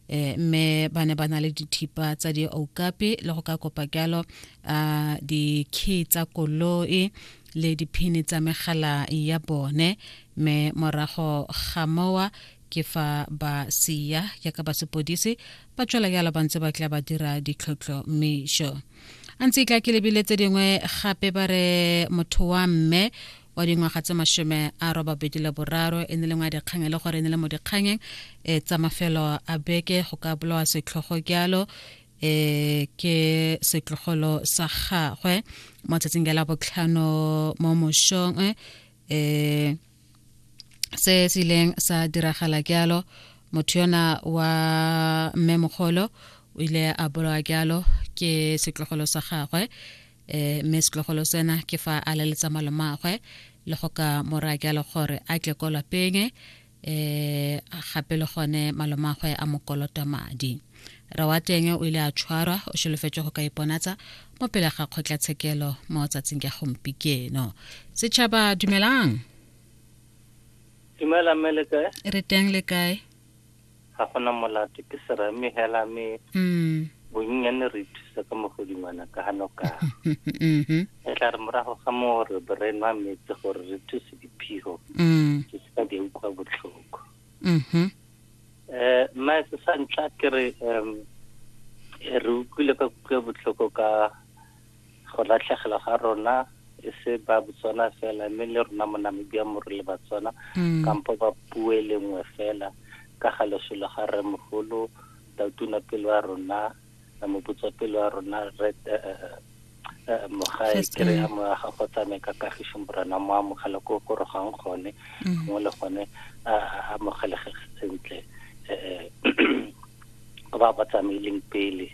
eh, mme ba ne ba na le dithipa tsa dioukape le go ka kopa jalo um dikey tsa koloi le diphini tsa megala ya bone mme morago ga mowa ke fa ba sia jaaka ba sepodisi ba tswela jalo ba ntse ba tla ba dira ditlhotlho mesho a ntse e tla ke lebile tse dingwe gape ba re motho wa mme wa dingwaga tse mashome a robabedi le boraro e ne le ngwa dikgang e le gore e ne le mo dikganyeng e tsa mafelo a beke go ka bolawa setlhogo jalo e ke setlogolo sa gagwe mo tsatsing la botlhano mo moshong e se se ileng sa diragala jalo motho yona wa mmemogolo o ile a bolawa jalo ke setlogolo sa gagwe eh mme setlogolo sena ke fa a leletsa malomagwe le go ka mora ke le gore a tle ko lapeng eh gape le gone malomagwe a mokolota madi ra wa teng o ile a tshwarwa o solofetse go ka iponatsa mo pele ga kgotlatshekelo mo tsatsing ya gompikeno setšhaba dumelang dumela mme le kae re teng le kae ga gona molato ke serame hela me mm. bonnyane re ithusa ka mogodingwana ka ga noka mm-hmm. e tla re morago ga moo re be re nwa metse gore re thuse diphigo mm. ke seka di utlwa botlhoko um mm-hmm. eh, mmae se sa ntlha ke re um re utlwile ka kutlwa botlhoko ka Go latlhegelwa ga rona e se ba Botswana fela mme le rona mo Namibia mo re le Batswana mm. kampo ba puo e le nngwe fela ka ga lesolo ga re mogolo tautuna pelo ya rona moputso pelo ya rona re eh, eh, eh, mogae kere ya moya ga go tsamaye ka kagiso morena mo amogela ko go rogang gone mm. gongwe le gone a amogelege sentle um ba ba tsamaileng pele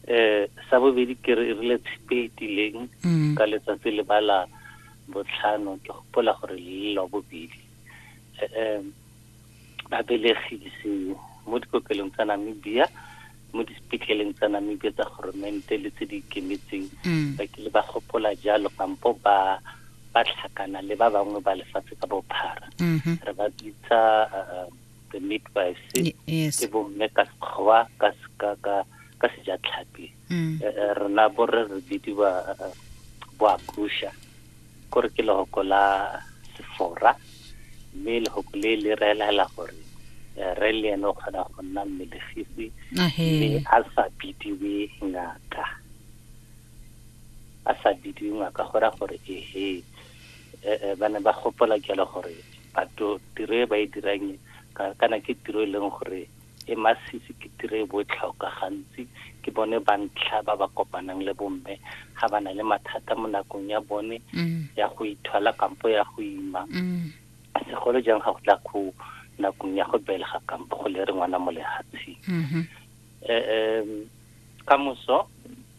eh sa bobedi ke re rile tshipe e tileng mm. ka letsatsi le bala botlhano ke gopola gore le la bobedi eh, eh ba belegise mo dikokelong tsa Namibia mo disepetleleng tsa Namibia tsa goromente le tse di ikemetseng mm. ba kile ba gopola jalo kampo ba ba tlhakana le ba bangwe ba lefatshe ka bophara mm-hmm. re ba bitsa eh, the midwives eh, yes. ke bomme ka sekgowa ka ka ka ka sejatlhapi mm. eh, eh, rena borre re bidiwa boakusha kore ke lehoko la sefora mme lehoko le le reelela gore re le ene o kgona go nna mmelegisi mme a sa bidiwe ngaka a sa bidiwe ngaka go ra gore ehe eh, eh, ba ne ba gopola jalo gore batho tiro e ba e dirang kana ke tiro e leng gore e masisi ke tiro e botlhokwa gantsi ke bone bantlha ba ba kopanang le bomme ga ba na le mathata mo nakong ya bone mm. ya go ithola kampo ya go ima mm. segolo jang ga go tla go nakong ya go belega kampo go le re ngwana mo lehatsheng mm-hmm. eh, ka moso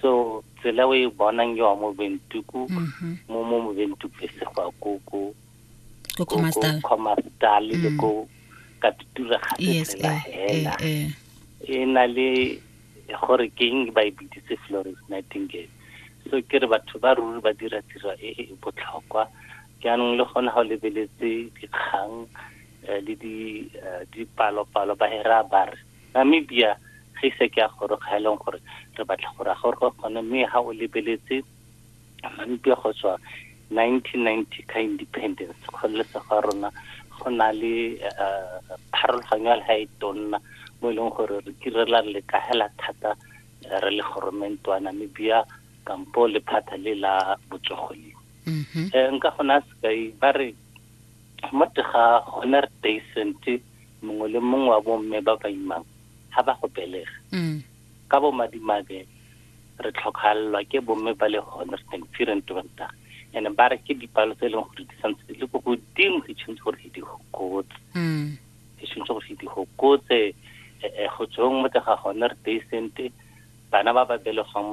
so tsela o e bonang yo mo bentuku mhm. mo mo mo bentuku e se go ko ko ko komastal komastal le mm. ko ka tutura ga se la eh, hela eh, eh. e na le gore ke eng ba e biditse Florence Nightingale so ke re batho ba ruri ba dira tiro e e botlhokwa jaanong le gone ga o lebeletse dikgang le di dipalo-palo ba hera ba re Namibia ge ise ke a goroga ha e leng gore re batla gore a gore gone mme ha o lebeletse Namibia go tswa 1990 ka independence kgololesego ya rona go na le eh, pharologanyo ya leha e tonna mo e leng gore re kirela re lekahela thata eh, re le goromente wa Namibia kampo lephata le la botsogo le um nka gona sekai ba re mo tega gone re teisente mongwe le mongwe wa bomme ba ba imang ga ba go belega mm. ka bomadimabe re tlhokalelwa ke bomme ba le honest and firent banta and ba re ke dipalo tse e leng gore di santse di le ko godimo di tshwanetse gore di gokotse mm. di tshwanetse gore di gokotse eh, eh, go tsweng mo tega gone re teisente bana ba ba belegwang mo